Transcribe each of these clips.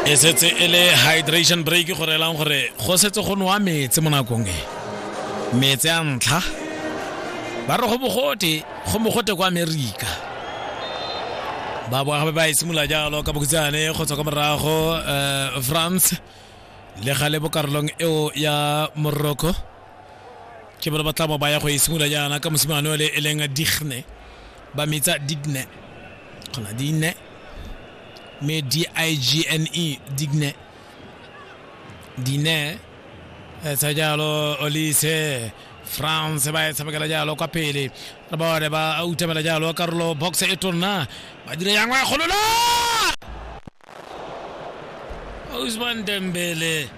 e setse e le hydration break go reelang gore go setse go nwa metsi mo nakong e metsi a ntlha ba re go bogote go mogote kwa amerika ba boa gape ba e simolola jalo ka bokhutshane go tswa kwa morago um france le gale bo karolong eo ya morocco ke bone ba tla bo baya go e simolola jaana ka mosimane ole e leng digne ba metsa digne kgona digne mme d-i-g-n-e digne dine etsa jalo olise france ba e tshamekela jalo kwa pele re bone ba utamela jalo karolo box e tonna ba dira yang wa e golola Ousmane Dembele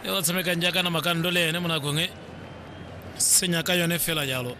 e o tshamekang jaaka na makando le ene mo nakong e senya ka yone fela jalo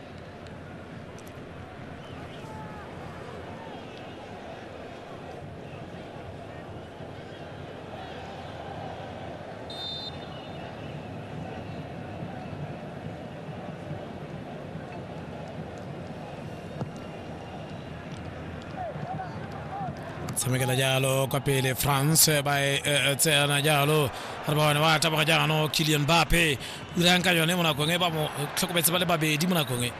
tshamekela jalo kwa pele france ba e e- e tseyana jalo re bone ba taboga jaanong kilian bape o dirang ka yone mo nakong e ba mo tlhokometse ba le babedi mo nakong e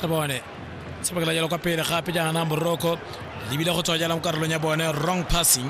re bone tshamekela jalo kwa pele gape jaana morocco lebile go tswa jalo mo karolong ya bone wrong passing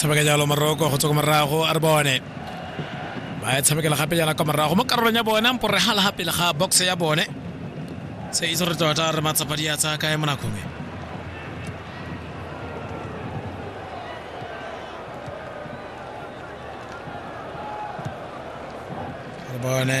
tshameka jalo maroko go tswa ko morago a re bone ba e tshamekela gape jana kwa morago mo karolong ya bone mpo re gala gapele ga box ya bone se itse re tota re matsapa di a tsaya kae mo nakong e re bone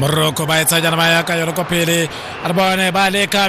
moroko ba e tsaya jana ba ya ka yone kwa pele a re bone ba leka